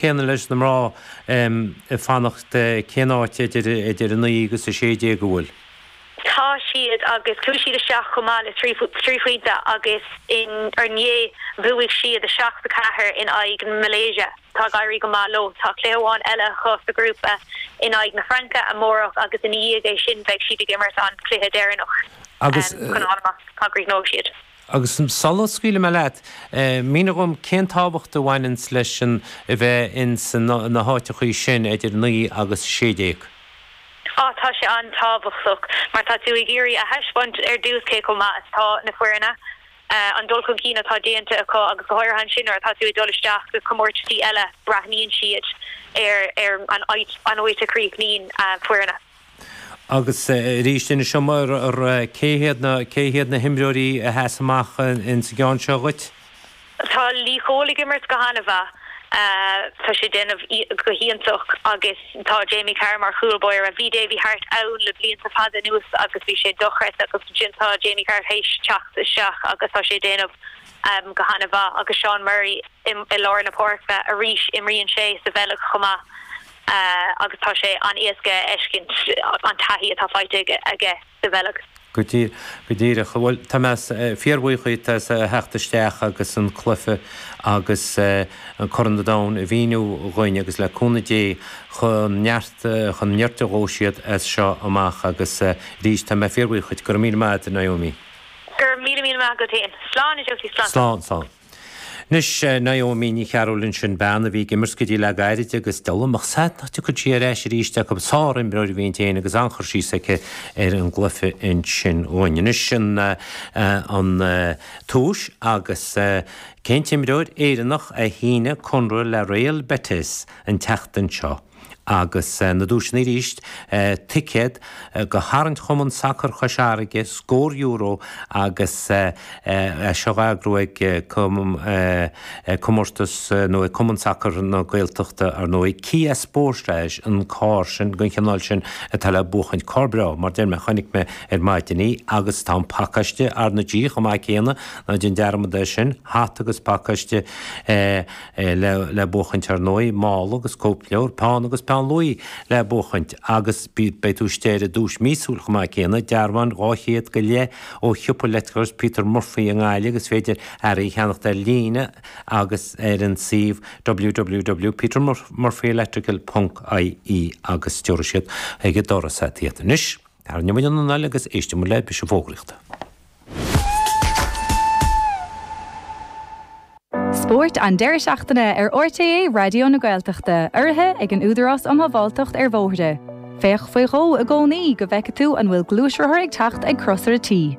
céanna leis na mná, ag fanacht cén áit idir 9 agus 16 a bhfuil siad agus chuaigh siad isteach go maith le trí phointe agus ar ndóigh bhuaigh siad 7, 4 in aghaidh na Malaeisia. Tá ag éirí go maith leo. Tá cluiche amháin eile acu sa ghrúpa in aghaidh na Fraince amárach agus ina dhiaidh é sin beidh siad ag imirt an cluiche deireanach chun fáil amach cá gcríochnóidh siad. Agus sula scaoilim mé leat, mínigh dhom cén tábhacht a bhaineanns leis an a bheith ins na háiteachaí sin idir a naoi agus a sé déag? Á, tá sé an-tábhachtach mar tá tú ag iarraidh a thaispeáint ar dtús cé chomh maith is atá na foirne, an dul chun cinn atá déanta acu agus go háirithe ansin nuair atá tú ag dul isteach go comórtaisí eile, breathnaíonn siad ar an áit, an áit a chríochnaíonn foirne. Agus arís le do shamhradar cé hiad na himreoirí a sheas amach insa gceann seo dhuit? Tá Lee Cole ag imirt go han-mhaith. Tá sé ag déanamh go hiontach agus tá Jamie Carr mar chúl báire. Bhí Davy Harte ann le blianta fada anuas agus bhí sé dochreidte agus ansin tá Jamie Carr th'éis teacht isteach agus tá sé ag déanamh go han-mhaith. Agus Seán Murray i lár na páirce arís. Imríonn sé sa Bheilg chomh maith. agus tá sé an-éasca a fheiscint an taithí atá faighte aige sa Bheilg. Go díreach. Bhuel, tá mé fíorbhuíoch as a theacht isteach agus an cluiche agus Corn an Domhain a mhíniú dhuinn agus le cúnamh Dé gur ó neart go neart a ghabhfaidh siad as seo amach agus arís, tá mé fíorbhuíoch dhuit. Go raibh míle maith agat, Naomi. Go raibh míle míle maith agat féin. Slán a Josie, slán. Slán, slán. Anois, Naomi Ní Chearúill ansin bean a bhí ag imirt go dtí le gairid agus dá bhfuil a fhios a'm nach dtiocfaidh sí ar ais arís chucu. Sár-imreoir a bhí inti féin agus an-chur síos aici ar an gcluiche ansin uainn. Anois an tomhais agus cén t-imreoir Éireannach a shínigh conradh le Real Betis an tseachtain seo? Agus na duaiseanna arís, ticéad go tharraingt Chumann Sacair Chois Fharraige, scór euro agus é seo á eagrú ag Comórtas nó ag Cumann Sacair na Gaeltachta, ar ndóigh. Kia Sportage an carr sin, den chineál sin atá le buachaint. Carr breá, mar deir mé, chonaic mé ar maidin é agus tá an pacáiste RnaG chomh maith céanna, ná déan dearmad air sin, hata agus pacáiste. é le buachaint ar ndóigh, mála agus cóipleabhar, peann agus peann luaí le buachaint agus beidh tú istigh ar an duais mhíosúil chomh maith céanna, dearbhán dhá chéad go leith ó shiopa leictreachais Peter Murphy i nGaillimh, agus is féidir earraí a cheannacht ar líne agus ar an suíomh www.petermurphyelectrical.ie agus tiúrfaidh siad chuig an doras iad. Anois, tarraingeoimid an anáil agus éistimid le píosa fógraíochta. Spórt an deireadh seachtaine ar RTÉ Raidió na Gaeltachta, urraithe ag an Údarás um Shábháilteacht ar Bhóithre. Féach faoi dhó i gcónaí go bhfeicfidh tú an bhfuil gluaisrothar ag teacht ag crosaire T.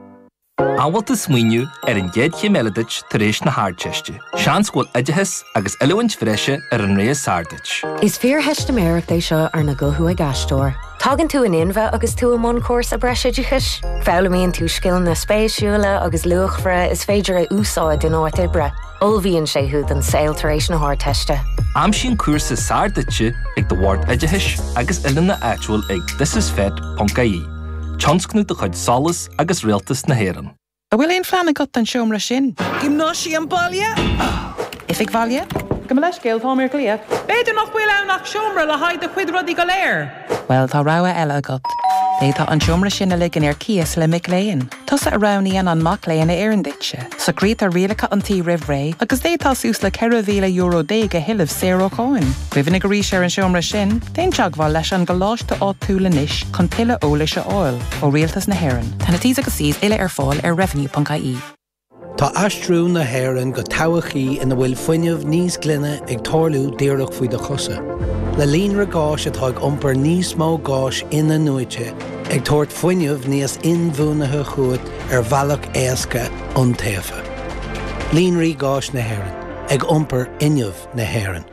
An bhfuil tú ag smaoineamh ar an gcéad chéim eile duit tar éis na hArdteiste? Seans go bhfuil oideachas agus oiliúint bhreise ar an rogha is fearr duit. Is fíortheistiméireacht é seo arna guthú ag aisteoir. Tagann tú in inmhe agus tú i mbun cúrsa breisoideachais. Foghlaimíonn tú scileanna spéisiúla agus luachmhara is féidir a úsáid in áit oibre. Ullmhaíonn sé thú don saol tar éis na hArdteiste. Aimsigh an cúrsa is fearr duitse ag do Bhord Oideachais agus Oiliúna áitiúil ag thisisfet.ie, tionscnamh de chuid SOLAS agus Rialtas na hÉireann. An bhfuil aon phlean agat don seomra sin? Giomnáisiam baile? Oifig bhaile? Gabh mo leithscéal, táim ar ghlaoch. B'fhéidir nach bhfuil ann ach seomra le haghaidh do chuid rudaí go léir? Bhuel, tá rogha eile agat. D'fhéadfá an seomra sin a ligean ar cíos le mic léinn. Tusa a roghnaíonn an mac léinn a oireann duitse. Socraítear rialacha an tí roimh ré agus d'fhéadfá suas le €14,000 a thuilleamh saor ó cháin. Cuimhnigh arís ar an seomra sin, déan teagmháil leis an gcoláiste áitiúil anois chun tuilleadh eolais a fháil ó Rialtas na hÉireann. Tá na T's agus C's uile ar fáil ar revenue.ie. Tá aistriú na hÉireann go todhchaí ina bhfuil fuinneamh níos glaine ag tarlú díreach faoi do chosa. Le líonra gáis atá ag iompar níos mó gáis in-athnuaite, ag tabhairt fuinneamh níos inbhuanaithe chugat ar bhealach éasca, iontaofa. Líonraí Gáis na hÉireann, ag iompar fhuinneamh na hÉireann.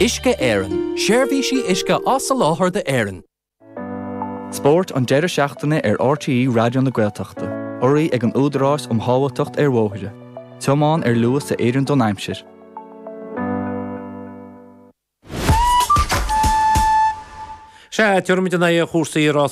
Uisce Éireann, Seirbhísí uisce á soláthar d'Éirinn. Spórt an deireadh seachtaine ar RTÉ Raidió na Gaeltachta, urraithe ag an Údarás um Shábháilteacht ar Bhóithre, tiomáin ar luas a oireann don aimsir. Sea, tiocfaimid in aghaidh chúrsaí rásaí.